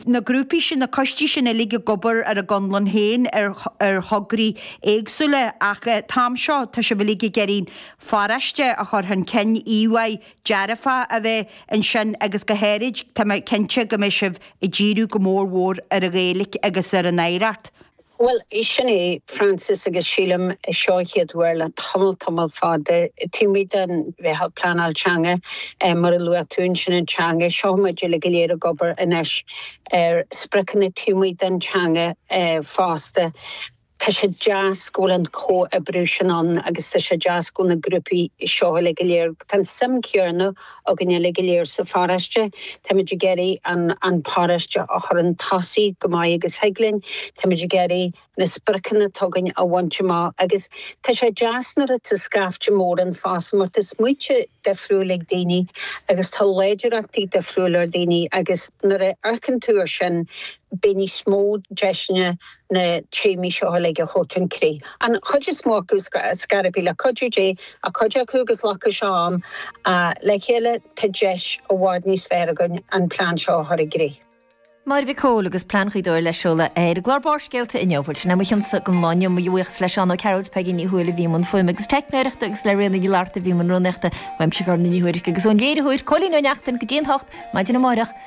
na grúpaí sin, na coistí sin uilig ag obair ar a gconlán féin ar, ar thograí éagsúla ach an t-am seo tá sibh uilig ag iarraidh an pharáiste a chur chun cinn, íomhá dearfá a bheith ansin agus go háirid tá mé cinnte go mbeidh sibh ag díriú go mór mhór ar an Ghaeilic agus ar an oidhreacht. Bhuel, sin é Frances agus sílim seo an chéad uair le tamall tamall fada. Taobh amuigh den mheitheal pleanáil teanga mar a luaigh tú, ansin an teanga. Seo muid uilig go léir ag obair anois ar spriocanna taobh amuigh den teanga fosta. Tá sé deas go bhfuil an comhoibriú sin ann agus tá sé deas go bhfuil na grúpaí seo uilig go léir. Tá an suim chéanna againn uilig go léir sa pharáiste. Táimid ag iarraidh an paráiste a chur 'un tosaigh chomh maith agus a thig linn. Táimid ag iarraidh na spriocanna atá againn a bhaint amach agus tá sé deas nuair atá scaifte mór ann fosta mar tá smaointe difriúil ag daoine agus tá láidreachtaí difriúil ag daoine agus nuair a amharcann tú ar sin beidh níos mó deiseanna na nithe seo uilig a chur chun críche. An chuid is mó acu go gasta le cuidiú Dé ach cuid acu glacfaidh sé am. Le chéile tá deis i bhfad níos fearr againn an plean seo a chur i gcrích. Máire Mhic Comhaill agus Plean Ghaoth Dobhair le seoladh ar chlár Barrscéalta inniu. Bhuel, sin a mbeidh d'am againn don lá inniu. Mo bhuíochas le Seán Ó Cearúil is Peigí Ní Thuathail a bhí i mbun fuaime agus teicneoireachta agus le Ríona Ní Fhlatharta a bhí i mbun rúnaíochta. Uaimse Gormfhlaith Ní Thuairisg agus ón léiritheoir Cóilín Ó Neachtain. Go dtí an t-ocht, maidin amárach.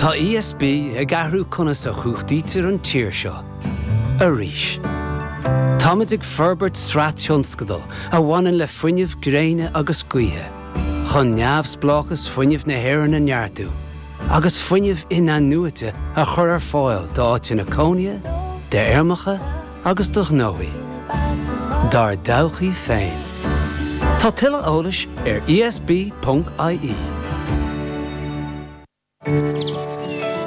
Tá ESB ag athrú conas a chumhachtaítear an tír seo. Arís. Táimid ag forbairt sraith tionscadal a bhaineann le fuinneamh gréine agus gaoithe, chun neamhspleáchas fuinnimh na hÉireann a neartú agus fuinneamh in-athnuaite a chur ar fáil d'áiteanna cónaithe, d'fheirmeacha, agus do ghnóthaí Dár dtodhchaí féin. Tá tuilleadh eolais ar ESB.ie.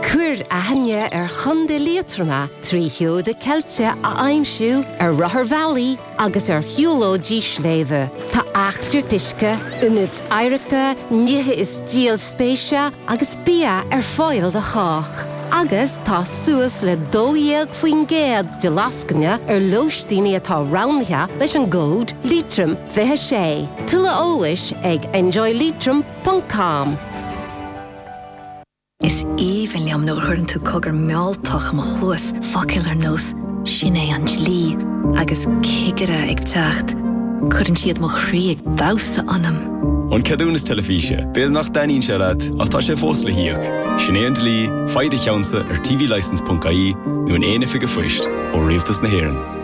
Cuir aithne ar Chontae Liatroma trí sheoda ceilte a aimsiú ar rotharbhealaí agus ar shiúlóidí sléibhe. Tá eachtraí uisce, ionaid oidhreachta, nithe is díol spéise agus bia ar fáil do chách, agus tá suas le 12% de lascaine ar lóistíní atá roghnaithe leis an gcód Leitrim26. Tuilleadh eolais ag enjoyleitrim.com. Is aoibhinn liom nuair a chuireann tú cogar mealltach i mo chluas, focail ar nós 'Sin é an dlí' agus 'Cigire ag teacht', cuireann siad mo chroí ag damhsa ionam. An ceadúnas teilifíse, b'fhéidir nach dtaitníonn sé leat ach tá sé fós le híoc. Sin é an dlí, faigh do cheannsa ar tvlicence.ie nó in aon oifig phoist ó Rialtas na hÉireann.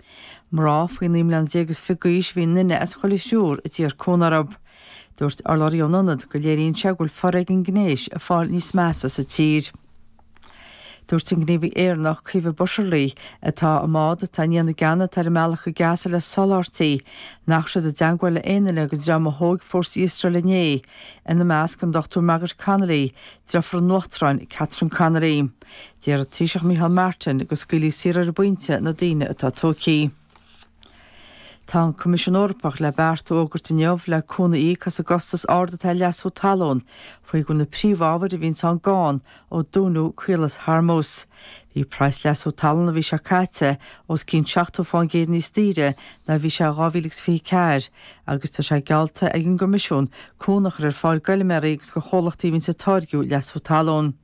Mná faoi naoi mbliana déag is fiche d'aois a bhí i nduine as chuile thriúr a d'iarr cúnamh orthu. Dúirt urlabhraí ón ionad go léiríonn sé go bhfuil foréigean gnéis ag fáil níos measa sa tír. Dúirt an gníomhaí Éireannach, Caoimhe Butterly, atá i mbád atá i ndiaidh na gceann atá ar a mbealach go Gaza le soláthairtí, nach bhfuil siad i dteangmháil le aon duine den dream a thóig fórsaí Iosrael inné, ina measc an Dr Margaret Connolly, deirfiúr an Uachtaráin Catherine Connolly. D'iarr an Taoiseach Micheál Martin go scaoilfí saor ar an bpointe na daoine atá tógtha. Tá an Coimisiún Eorpach le beart a fhógairt inniu le cúnamh a íoc as an gcostas ard atá ar leasú talún faoi go bhfuil na príomhábhair a bhíonn ann gann ó dúnadh Caolas Hormuz. Bhí praghas leasú talún an mhí seo caite os cionn 70 fán gcéad níos daoire ná a bhí sé in 2024 agus tá sé geallta ag an gCoimisiún cúnamh a chur ar fáil d'fheilméaraí agus do chomhlachtaí a bhíonn ag táirgiú leasú talún.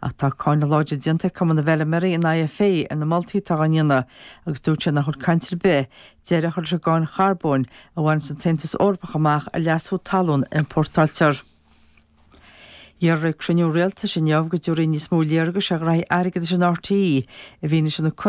Ach tá cáineadh láidir déanta ag Cumann na bhFeilméaraí an IFA ar na moltaí atá á ndéanamh agus dúirt sé nach bhfuil caint ar bith deireadh a chur leis an gcáin charbóin a bhaineann an tAontas Eorpach amach ar leasú talún a iompórtáiltear. Iarradh ag cruinniú rialtais inniu go dtabharfaí níos mó léargais ar ghraithí airgeadais in RTÉ i bhfianaise na